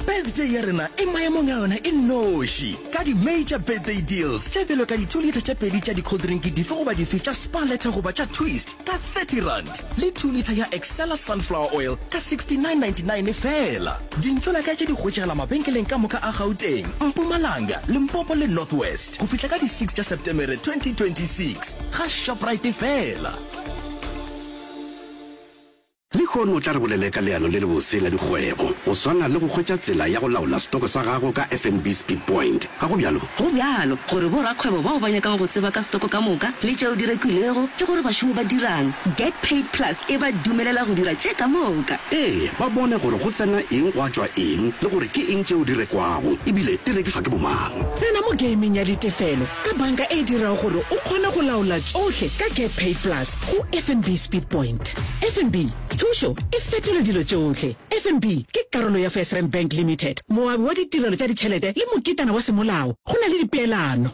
birthday ya rena e maemong a yona e noši ka di-major birthday deals tše bjalo ka di-two litre tše pedi tša di-coldrinki dife goba dife tša spa letter goba tša twist ka 30 rand le two litre ya excella sunflower oil ka 69.99 fela dintlola ka tše di hwetšagala mabenkeleng ka moka a gauteng mpumalanga limpopo le north west go fihla ka di-6 tša septemere 2026 ga shoprite fela Lehono o tla re bolele ka leano le lebose la dikgwebo, go swana le go hwetša tsela ya go laola stoko sa gago ka FNB Speed Point. Ga go bjalo? Go bjalo, gore borakgwebo bao ba nyakago go tseba ka stoko ka moka le tšeo di rekilwego le gore bašomi ba dirang, Get Paid Plus e ba dumelela go dira tše ka moka. Ee, ba bone gore go tsena eng gwa tšwa eng le gore ke eng tšeo di rekwago e bile di rekišwa ke bomang. Tsena mo gaming ya ditefelo ka banka e dirago gore o kgone go laola tšohle ka Get Paid Plus go FNB Speed Point. FNB, thušo e fetola dilo tšohle. FNB ke karolo ya FirstRand Bank Limited, moabi wa ditirelo tša ditšhelete le moketana wa semolao go na le dipeelano.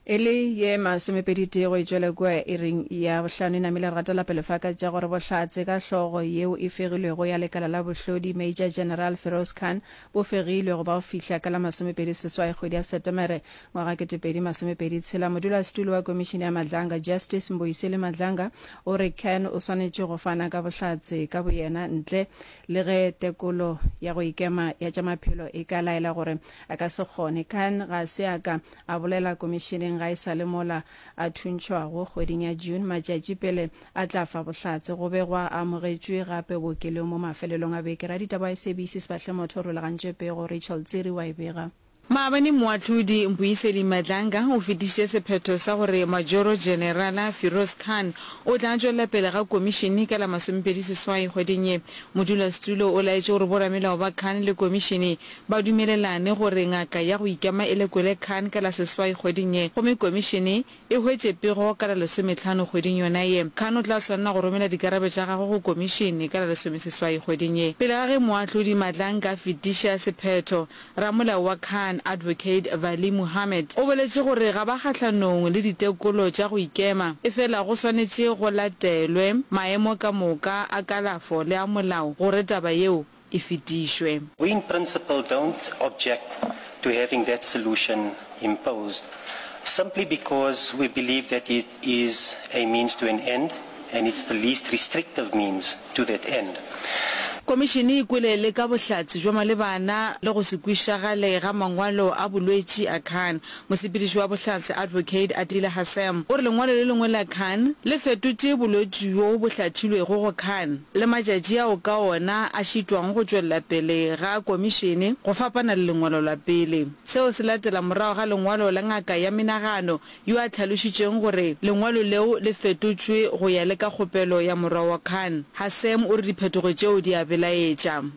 E le ye masomepedi tee go e tšwele kua iring ya bohlano e namile re gatela pele fa ka tša gore bohlatse ka hlogo yeo e fegilwego ya lekala la bohlodi Major General Feroz Khan bo fegilwe go ba go fihla ka la masomepedi seswai kgwedi ya Setemere ngwaga kete pedi masomepedi tshela. Modulasetulo wa Komišene ya Madlanga Justice Mbuyiseli Madlanga o re Khan o swanetše go fana ka bohlatse ka boyena ntle le ge tekolo ya go ikema ya tša maphelo e ka laela gore a ka se kgone. Khan ga se a ka a bolela komišeneng ga e sa le mola a thuntšhwago kgweding ya June matšatši pele a tla fa bohlatse. Go be gwa amogetšwe gape bookelong mo mafelelong a beke. Raditaba wa SABC Sefahlemotho o rulagantše pego, Rachel Tsiri wa e bega. Maabane Moahlodi Mpuiseli Madlanga o fetišitše sephetho sa gore Majoro Jenerala Firoz Khan o tla tšwelela pele ga komišene ka la masomepedi seswai kgweding ye. Modulasetulo o laetše gore boramelao ba Khan le komišene ba dumelelane gore ngaka ya go ikema e lekole Khan ka la seswai kgweding ye gomme komišene e hwetše pego ka la lesometlhano kgweding yona ye. Khan o tla swanela go romela dikarabo tša gagwe go komišene ka la lesomeseswai kgweding ye pele ga ge moahlodi Madlang ka fetiša sephetho. Ramolao wa Khan, Advocate Vali Muhammad, o boletše gore ga ba kgahlanong le ditekolo tša go ikema efela go swanetše go latelwe maemo ka moka a kalafo le a molao gore taba yeo e fetišwe. We in principle don't object to having that solution imposed simply because we believe that it is a means to an end and it's the least restrictive means to that end. Komišene e kwele le ka bohlatse bja malebana le go se kwišagale ga mangwalo a bolwetši a Khan. Mosepediši wa Bohlatse Advocate Atile Hassem o re lengwalo le lengwe la Khan le fetotše bolwetši bjo bo hlathilwego go Khan le matšatši ao ka ona a šitwago go tšwelela pele ga komišene go fapana le lengwalo la pele. Seo se latela morago ga lengwalo la ngaka ya menagano yo a hlalošitšeng gore lengwalo leo le fetotšwe go ya le ka kgopelo ya morwa wa Khan. Hassem o re diphetogo tšeo di a belaetša.